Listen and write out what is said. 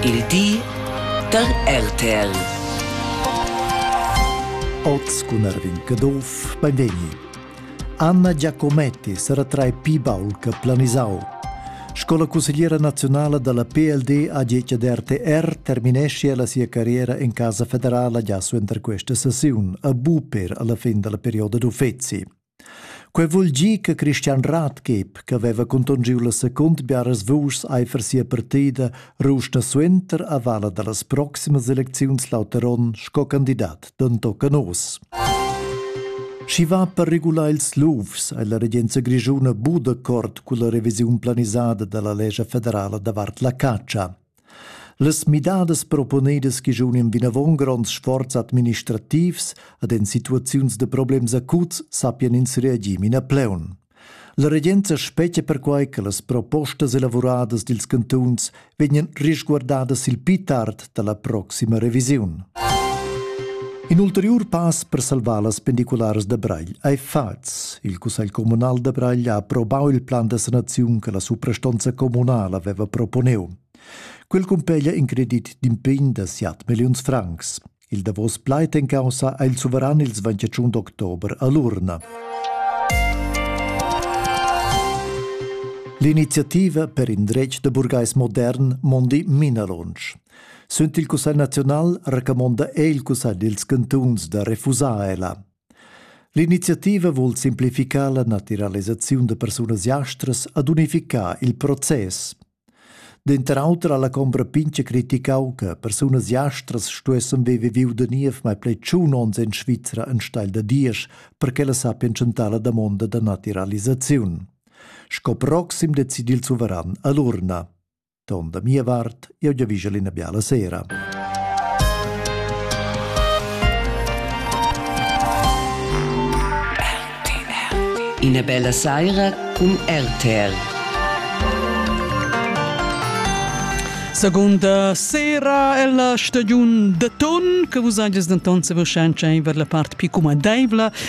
Il di da RTL. Oz cun Erwin Caduff, benvegni. Anna Giacometti sarà tra i pi baul che planisau. Scola consigliera nazionale dalla PLD a Gece de RTR terminesce la sua carriera in casa federale già su entre queste sessioni, a Bu per alla fin della periodo d'uffezi. Quei vul dir che Christian Rathgeb, che veva contongiu la secund biaras vuschs eifer sia partida, rusta suenter a vala dallas proximas elecziuns Lauteron sco candidat d'entochen oz. Schi va per regular ils lufs è la regenza grigiuna Budakort culla revisiun planisada dalla lescha federala davart la caccia. Las midadas proponedas giunim vinavon gronds sforzs administrativs ad en situaziuns de problems acuts sappien ins reagir mina pleun. La regenza spetga perquai che las propostas elavuradas dils cantuns vegnan risguardadas il pli tard dalla proxima revisiun. In ulteriur pass per salvar las pendicularas da Bragl ei fatgs. Il cussegl communal da Bragl ha aprobau il plan da sanaziun che la suprastonza communal aveva proponeu. Quel cumpeglia in credit d'impegn da 7 milliuns francs. Il davos plaid en caussa ha il suveran il 21 october a l'urna. L'iniziativa per in dretg da burgais modern mondi minalonsch. Sunt il Cussegl naziunal recamonda è il Cussegl dils cantuns da refusar ella. L'iniziativa vul simplificar la naturalisaziun de persunas jastras ad unificar il process. Denter auter alla combra pinche criticau che persunas jastras stuessen vive viu de niev mai plei tschun ons in Svizzera en steil da Diesch per che la sappien centar la damonda da naturalisaziun. Sco proxim decidi il suveran all'urna. Ton da mia vart, eu giavigel ina biala sera. Ina bella saira cun RTR. Seconda sera è la stagiun de ton che vos hages denton se voschanza in ver la part più cumadeivla